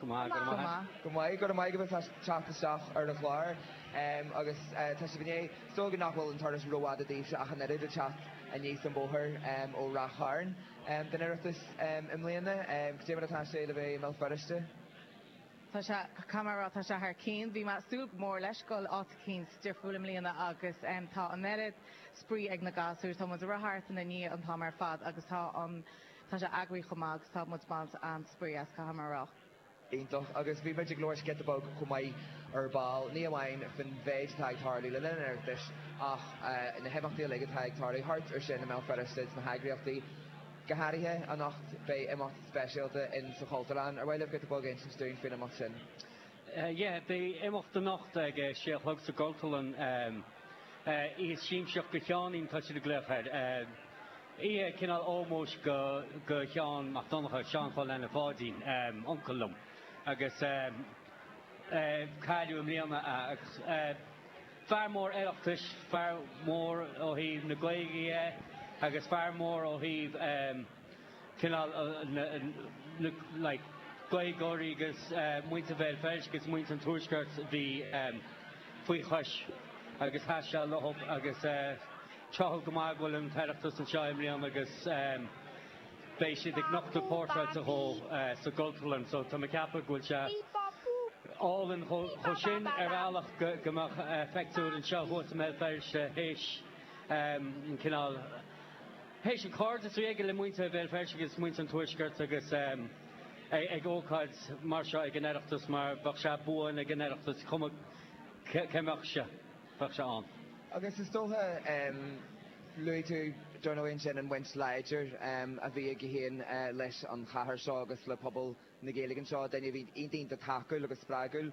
Go maith, go maith. Go maith, go maith go bhfuil tú ag teacht isteach ar an chlár agus táthar ag súil linn é. Is dócha nach bhfuil an turas rófhada daoibhse ach an oiread ag teacht aníos an bóthar ó Rath Chairn chun an Oireachtais i mbliana. Cé mar atá sé le bheith i mBéal Feirste? Tá sé, tá sé thar cionn. Bhí mé ag súil go mór leis, go bhfuil áit eicínt difriúil i mbliana agus tá an oiread spraoi ag na gasúir. Tá muid ag rith thart ina ndiaidh an t-am ar fad agus tá an Tá sé eagraithe chomh maith agus tá muid ag baint an-spraoi as, caithfidh mé a rá. Iontach. Agus bhí muid ag labhairt giota beag chomh maith ar ball, ní amháin faoin mhéid atá ag tarlú le linn an Oireachtais ach na himeachtaí uilig atá ag tarlú thart ar sin i mBéal Feirste sna heagraíochtaí. Go háirithe anocht beidh imeacht speisialta in sa Chultúrlann. Ar mhaith libh giota beag a insint dúinn faoin imeacht sin? Yeah, beidh imeacht anocht ag a sé a chlog sa gCultúrlann. Oíche siamsaíochta Sheáinín tá siad ag glaoch air. Oíche cineál ómóis do Sheán Mac Donncha, Seán Chóil Anna Pháidín, uncail liom agus cailleadh i mbliana é agus fear mór Oireachtais, fear mór ó thaobh na Gaeilge dhe agus fear mór ó thaobh cineál Gaeilgeoirí agus muintir Bhéal Feirste agus muintir an Tuaiscirt bhí faoi chois agus sheas sé leofa agus Tá sé go maith go bhfuil an tOireachtas anseo i mbliana agus beidh siad ag nochtadh portráid dhó sa gCultúrlann so tá mé ag ceapadh go bhfuil sé álainn chomh sin ar bhealach go mbeadh pictiúr dhó anseo thuas i mBéal Feirste théis an cineál théis an cairdeas a bhí aige le muintir Bhéal Feirste agus muintir an Tuaiscirt agus ag ócáid mar seo ag an Oireachtas mar bheadh sé buan ag an Oireachtas cuma cá mbeadh sé. bheadh sé ann. Agus is dócha, luaigh tú dar ndóigh sin an bhaint láidir a bhí aige féin leis an chathair seo agus le pobal na Gaeilge anseo, duine a bhí iontach iontach tacúil agus spreagúil.